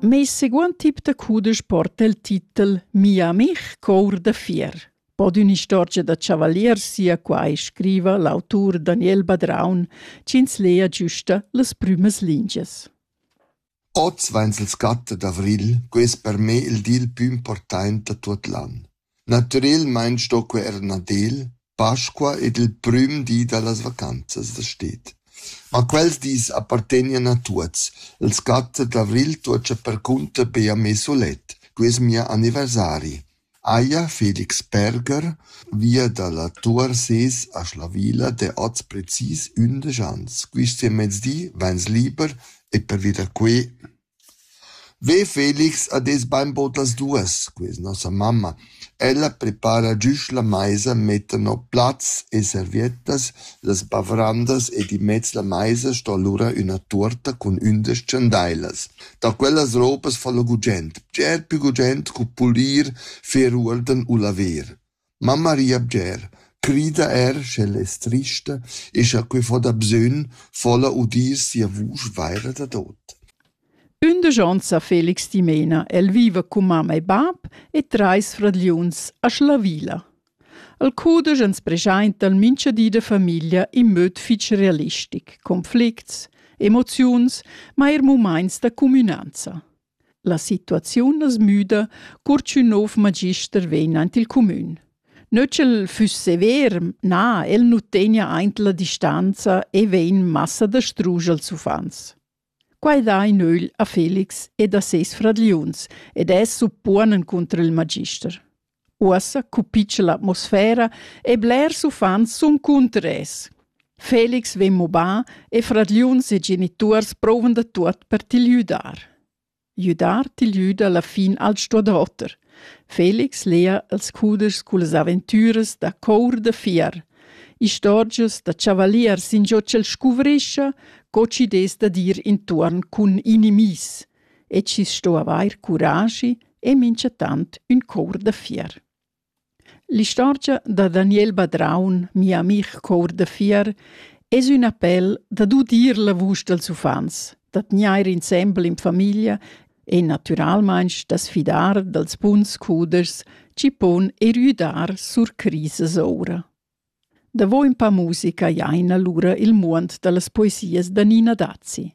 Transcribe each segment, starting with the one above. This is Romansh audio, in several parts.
Meis seguond tip da cudesch porta il titel Mia amich cour da fier. Bod ün'istorgia da chavalier sia quai, scriva l'autur Daniel Badraun, ch'ins lea giusta las prümas lingias. Oz vains il scatta d'avrigl, quai es per me il dil pü important da tuot l'an. Natüralmaing sto quer Nadel, Pasqua ed il prüm di da las vacanzas da sted. Ma quels dis appartegnan a tuots. Il scatto d'avrigl tuocha percunter be a me sulet. Quai es mia anniversari. Haja Felix Berger via da la Tuor ses a Schlavilla d'he hoz precis ündesch ans. Quist mezdi vains liber e pervi da que Ve Felix ha detg bainbaud las duas, questa nossa mamma. Ella prepara giusch la maisa, metta no plats e serviettas las bavrandas ed immez la maisa sto lura üna tuorta cun ündesch chandailas. Da quellas ropas fa lö gugent, bger pü gugent cu pulir, fer uorden u laver. Mamma ria bger, crida er sch'ella es trista e scha que fo dabsögn fo'la udir sia vusch vaira dadot. Ündesch ons ha Felix dimena. El viva cun mamma e bap e trais fragliuns a Schlavila. El cudesch ans preschainta mincha di da famiglia in möd fich realistic, conflicts, emoziuns, ma eir mumaints da cumünanza. La situaziun as müda cur ch'ün nouv magister vegn aint il cumün. Nö ch'el füss sever, na, el nu tegna aint la distanza e vegn massa da strusch als uffants. Quai dà in ögl a Felix ed a seis fradgliuns ed es suppuonen cunter il magister. Uossa cupitscha l'atmosfera e blers uffants sun cunter es. Felix vegn mobà e fradgliuns e genituors prouvan da tuot per til güdar. Güdar til güda la fin al sto da oter. Felix lea els cuders cullas aventüras da cour da fier. Istorgias da chavaliers in giò ch'el scuvrischa, co chi'd es da dir intuorn cun inimis. e chi sto avair curaschi e minchatant ün cour da fier. L'istorgia da Daniel Badraun, mia amih cour da fier, es ün appel dad udir la vusch dals uffants, da tgnair insembel in famiglia e natüralmaing da's fidar dals buns cudeschs chi pon erüdar sur crisas oura. Davo ün pa musica jaina lura il muond da las poesias da Nina Dazi.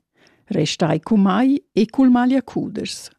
Restai cun mai e cul maglia cudeschs.